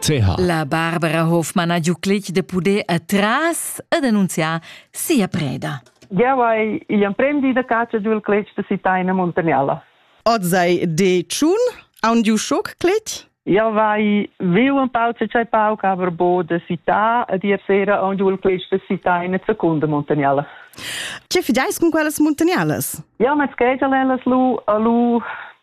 CH. La Barbara Hofmann ha giuclic de puder atras e denunciar sia preda. Jau hai igl emprem di da catscha giu il cletg de Sitaina Muntagnella. Oz ei de tschun aun giu schoc cletg? Jau vai viu un pau ce tschai pauc aber bo de Sita ed ier sera aun giu il cletg de Sitaina Secunda Muntagnella. Ce fideis cun quellas muntagnellas? Jau met schegel ellas lu a lu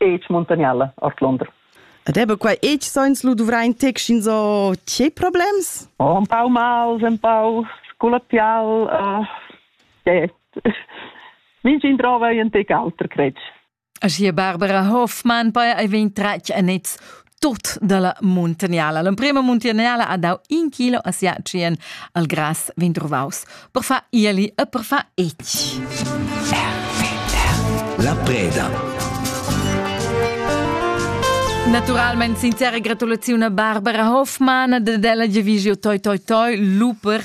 Age Montagniala ord Londra. Ed ebe quai age sainz lu duvrain tec so tgei problems? Oh, un pau mals, un pau sculatial, uh, eh, mingin drova e un tec alter, cretg. Aschia Barbara Hoffmann bei ei vegn tratg a nez tut dalla muntagnala. L'emprema muntagnala ha dau in kilo a sia tschien al grass vegn trovaus per far ieli e per far etg. La preda. Naturalmente sincera gratulazione a Barbara Hoffmann della Division Toi Toi Toi Luper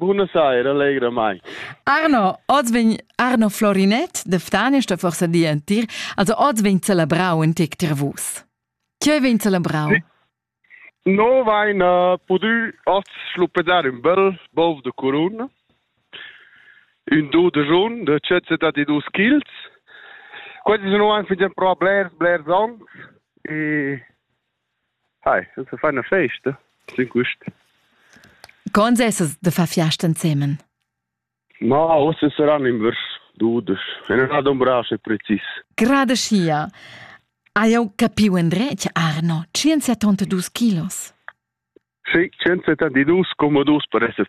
Buna saira, allegramaing. Arno, oz vegn Arno Florinet da Ftan sta forsa di entir, also oz vegn celebrau in tec tir vus. Che vegn celebrau? No vain uh, pudü oz schluppedar ün bel bov de curun, ün do de jun de 172 kg. Questi sono anche già pro blers blers anni e Hi, das ist eine feine Feste. Sind gut. Con essas de far fiasta ensemen? Ma osse saran invers dudes. E non ha un brace precis. Grade schia. Hai jau capiu endretg, Arno, 172 kilos? Sì, 172,2 per essere